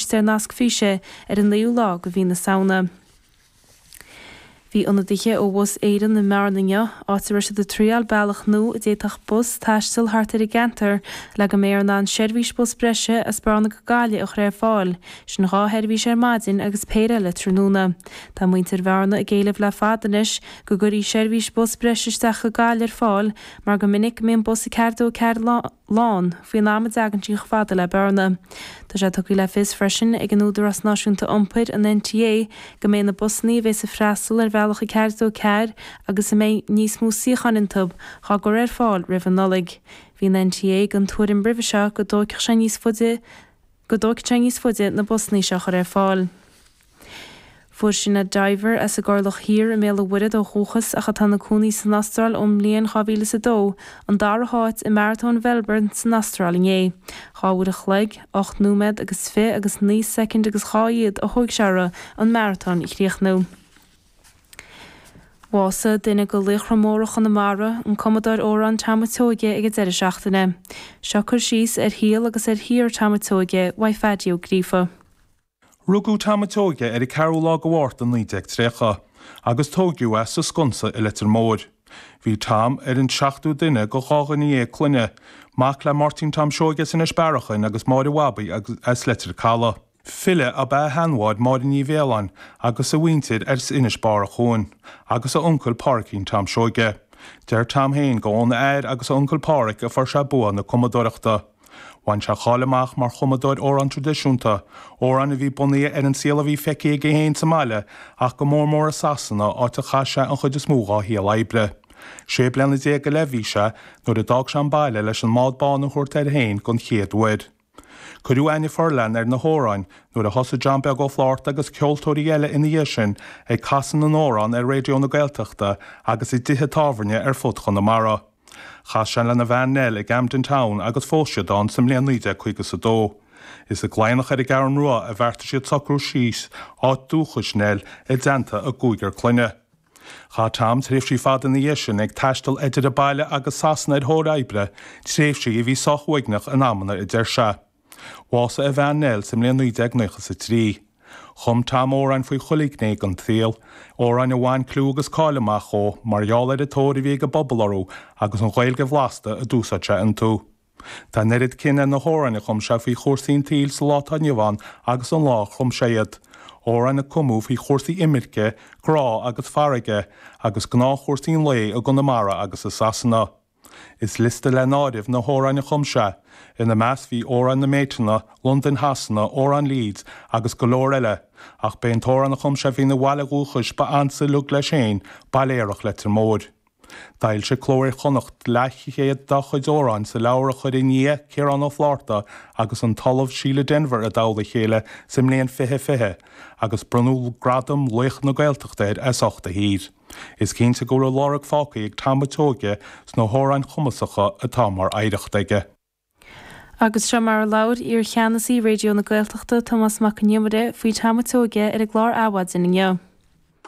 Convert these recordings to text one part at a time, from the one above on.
Tosóidh sé ar an naoú lá de mhí na Samhna. Bhí ionadaithe ó Bhus Éireann i mBearna inniu, áit a raibh siad ag triáil bealach nua a d'fhéadfadh bus taisteal thart ar an gceantar le go mbeifear in ann seirbhís bus breise as Bearna go Gaillimh a chur ar fáil, sin dhá sheirbhís ar maidin agus péire eile tráthnóna. Tá muintir Bhearna ag éileamh le fad anois go gcuirfí seirbhís bus breise isteach go Gaillimh ar fáil mar go minic go mbíonn bus a ceathair dó a ceathair lán, faoin am a dtagann sí chomh fada le Bearna. Tá sé tugtha le fios freisin ag an Údarás Náisiúnta Iompair, an NTA, go mbeidh na busanna a bheidh ag freastal ar bhealach a ceathair dó ceathair agus a mbeidh níos mó suíocháin iontu dhá gcur ar fáil roimh an Nollaig. Bhí an NTA den tuairim roimhe seo go dtógfadh sé níos faide go dtógfadh sé níos faide na busanna seo a chur ar fáil. Fuair Sinéad Diver, as an gCorrlach Thiar i mBéal an Mhuirthead ó dhúchas ach atá ina cónaí san Astráil ón mbliain 2002, an dara háit i Maratón Mhelbourne san Astráil inné. Dhá uair a chloig, ocht nóiméad agus fi agus naoi soicind agus dhá fhichead a thóg sé uirthi an maratón a chríochnú. Bhásaigh duine de laochra móra Chonamara, an cumadóir amhrán Tom a' tSeoige ag an deireadh seachtaine. Seo cur síos ar shaol agus ar shaothar Tom a' tSeoige, ag Peaidí Ó Gríofa. Rugadh Tom a' tSeoighe ar an 4ú lá de Mhárta 1930 agus tóigeadh é sa Sconsa i Leitir Móir. Bhí Tom ar an seachtú duine de dhá dhuine dhéag clainne, mac le Máirtín Tom Seoighe as Inis Bearachain agus Máire Bhabaí as Leitir Caladh. File ab ea a sheanmháthair Máire Ní Mhiolláin agus a mhuintir as Inis Bearachain agus a uncail Páraicín Tom Seoighe. Deir Tom fhéin go óna athair agus a uncail Páraic a fuair sé bua na cumadóireachta. Bhain sé cáil amach mar chumadóir amhrán tradisiúnta, amhráin a bhí bunaithe ar an saol a bhí feicthe aige féin sa mbaile ach go mór mór i Sasana, áit a chaith sé an chuid is mó dhá shaol oibre. Sé bliana déag go leith a bhí sé nuair a d'fhág sé an baile leis an mbád bán a thabhairt air féin don chéad uair. Cuireadh aithne fhorleathan ar na hamhráin nuair a thosaigh John Beag Ó Fláirta agus ceoltóirí eile ina dhiaidh sin ag casadh na n-amhrán ar Raidió na Gaeltachta agus i dtithe tábhairne ar fud Chonamara. Chas sé lena bhean Nell i gCamden Town agus phós siad ann sa mbliain 1952. Is i gCladhnach ar an gCeathrú Rua a bheartaigh siad socrú síos, áit dúchais Nell, i dteannta a gcúigear clainne. Chaith Tom tréimhsí fada ina dhiaidh sin ag taisteal idir a baile agus Sasana ar thóir oibre, tréimhsí a bhí sách uaigneach in amanna, a deir sé. Bhásaigh a bhean Nell sa mbliain 1993. Chum Tom amhráin faoi chuile ghné den tsaol, amhráin a bhain clú agus cáil amach dhó mar gheall ar an tóir a bhí ag an bpobal orthu agus an Ghaeilge bhlasta a d'úsáid sé iontu. Tá an oiread cion ar na hamhráin a chum sé faoi chúrsaí an tsaoil sa lá atá inniu ann agus an lá a chum sé iad, amhráin a cumadh faoi chúrsaí imirce, grá agus farraige, agus gnáthchúrsaí an lae i gConamara agus i Sasana. Is liosta le n-áireamh na hamhráin a chum sé, ina measc bhí Amhrán na mBéiteanna, Londain Shasana, Amhrán Leeds agus go leor eile, ach b'é an t-amhrán a chum sé faoina bhaile dhúchais ba ansa a luigh leis féin, Baile Aerach Leitir Móir. D'fhoilsigh Cló Iar-Chonnacht leathchéad dá chuid amhráin sa leabhar a chuir a nia, Ciarán Ó Flátharta, agus an tOllamh Síle Denvir i dtoll a chéile sa mbliain 2020, agus bronnadh gradam laoch na Gaeltachta air as ucht a shaothair. Is cinnte go bhfuil a lorg fágtha ag Tom a' tSeoighe sna hamhráin chumasacha atá mar oidhreacht aige. Agus seo mar a labhair iar-Cheannasaí Raidió na Gaeltachta, Tomás Mac Con Iomaire, faoi Tom a' tSeoighe ar an gclár Adhmhaidin inniu.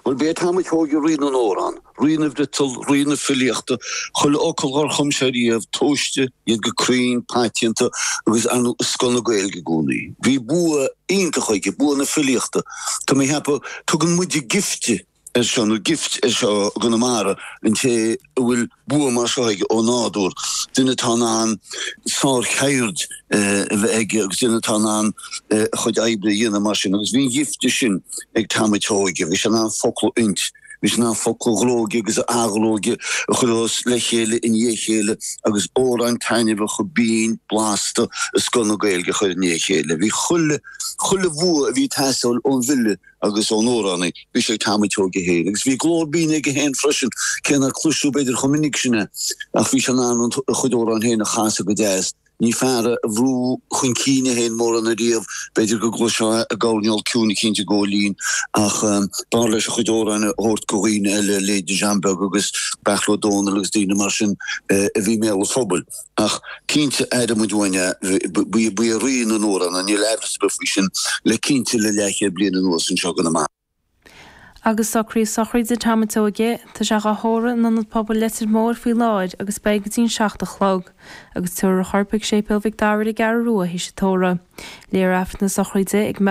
Bhuel, b'é Tom a' tSeoighe Rí na nAmhrán, Rí na bhFriotal, Rí na Filíochta, chuile fhocal dhár chum sé riamh, tomhaiste, iad go cruinn, paiteanta, agus ar ndú, i scoth na Gaeilge i gcónaí. Bhí bua iontach aige, bua na filíochta. Tá mé a cheapadh, tugann muide gifte. ar seo, nó gift ar seo i gConamara, an té a bhfuil bua mar seo aige ó nádúr, duine atá in ann sárcheird a bheith aige agus duine atá in ann a chuid oibre a dhéanamh mar sin. Agus bhí an ghifte sin ag Tom a' tSeoighe, bhí sé in ann focla a fhuint, bhí sé in ann focla a ghróigeadh agus a athghróigeadh, a chur os le chéile i ndiaidh a chéile agus amhráin taitneamhacha, binn, blasta, i scoth na Gaeilge a chur i ndiaidh a chéile. Bhí chuile, chuile bhua a bhí ag teastáil ón bhfile, agus ón amhránaí bhí sé ag Tom a' tSeoighe é féin agus bhí glór binn aige féin freisin, cé nár cloiseadh b'fhéidir chomh minic sin é, ach bhí sé in ann a chuid amhrán féin a chasadh go deas. Ní fear é a bhrúigh chun cinn é féin mórán ariamh, b'fhéidir go gcloisfeá i gcoirnéal ciúin é cinnte ag gabháil fhoinn, ach b'fhearr leis a chuid amhráin a thabhairt go dhaoine eile, leithéidí John Beag agus Beairtle Ó Domhnaill agus daoine mar sin, a bhí i mbéal an phobail. Ach cinnte, aireoidh muid uainn é. Ba é rí na n-amhrán é, níl aimhreas ar bith faoi sin, le cinnte le leathchéad bliain anuas, anseo i gConamara. Agus socruithe sochraide Tom a' tSeoighe. Tá sé dhá thórramh in Ionad Pobail Leitir Móir faoi láthair agus beidh go dtí an seacht a chlog. Agus tabharfar a chorp ag Séipéal Mhic Dara ar an gCeathrú Rua théis an tórraimh. Léifear aifreann na sochraide ag.